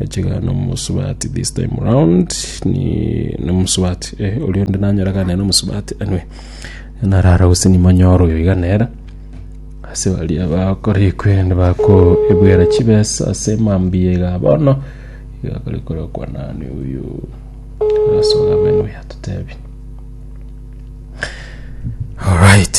Achiga nomosubati this time round ni nomosubati eh, oria onde nanyora gane nomosubati anwe narara gose nimonyoro oyo iga nera ase baria bakora ekwende bakoebwera chibesa ase mambia iga bono iga kore korokwa nani oyo asoga bene oyo atotebi alright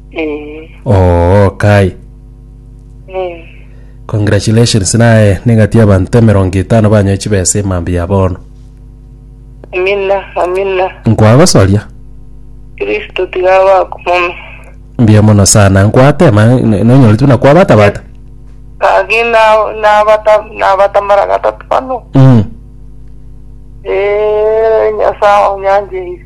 Eh, oo kai eh. congratulations naye nigati abanto emerongo etano banyoe chibesa emambia ya bono Amina, amina. nkwagosoria Kristo tiga bakumome. mbuya mono sana nkwatema n- nonyoretwe na kwabatabata Kagi na- nabata nabatamara gatatu bano. mm. Eh, Nyasaye onyanjeire.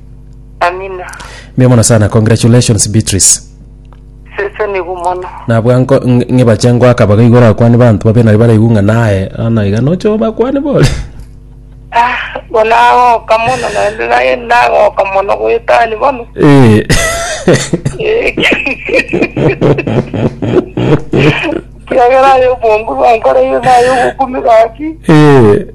Amina. Mbe mono sana congratulations beatrice Sese nigo mono. nabwa nko- ng- ng'ibache ngoaka baga igoro akwani banto babe nari baraigu ng'a naye ana iga nocho bakwani bore Ah, bonagoka mono naende naye nagoka mono goetani bono. Eh. Eh, Kiagera ayo obongu bwankoreire naye obokumi gaki. Eh.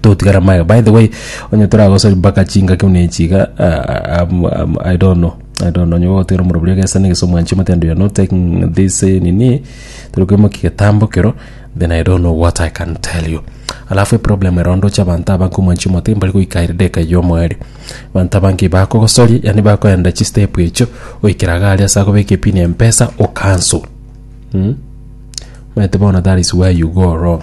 togotigara amaega by the way onye toragosori mpaka chingaki buna echi iga ah, am- am- i don't know i don't know onye gogotigara omorobio oria gesa negesa omwanchi omoteba you are not taking this eh, nini tori koimokia getambo kero then i don't know what i can tell you alafu eproblem ero ndoche abanto abange omwanchi omote mbari goika ere dageka ya omoerio abanto abange bakogosoria yaani bakoenda chistep echio goikera iga aria ase agobeka epini ya mpesa o cancel mm? omanyete bono that is where you go wrong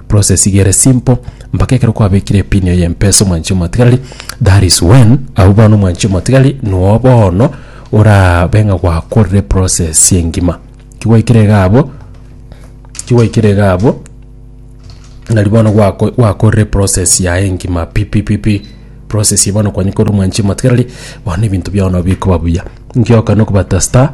Process iga ere simple mpaka ekero kwabekire epin eye mpesa omwanchi omotigari that is when abwo bono omwanchi omotigari noo bono orabe ng'a gwakorire process engima kigwaikire iga abwo kigwaikire iga abwo nari bono gwako- gwakorire process yaye engima pi pi pi pi process eye bono kwanyekorire omwanchi omotigareri bono ebinto biao nabikoba buya ngioka nokobata star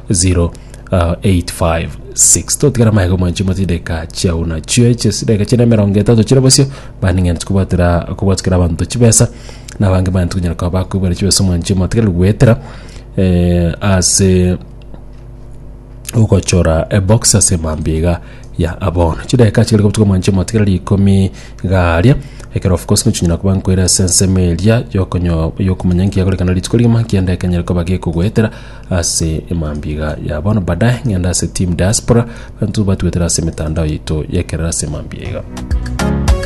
0856 totigara amaega omwanchi mote chideka chiao nachio eche chideka chiane emerongo etato chire bosio baning'anete kobwatera kobwatukera abanto chibesa na abange baanete konyara koba bakoibera chibesa omwanchi omotigari goetera eh, ase ogochora ebox ase emambia iga ya abono chideka chigere gobutuka omwanchi omotigere rikomi garia ekero of course nochinyara koba nkoira ase ensemo eria yokonyo yokomanya nkiagorekana rituko rigima kiende ekenyare koba gekogoetera Ase emambia iga ya bono baadaye ng'ende ase team diaspora, banto batwetera ase emetandao yaito y'ekerero ase emambia iga.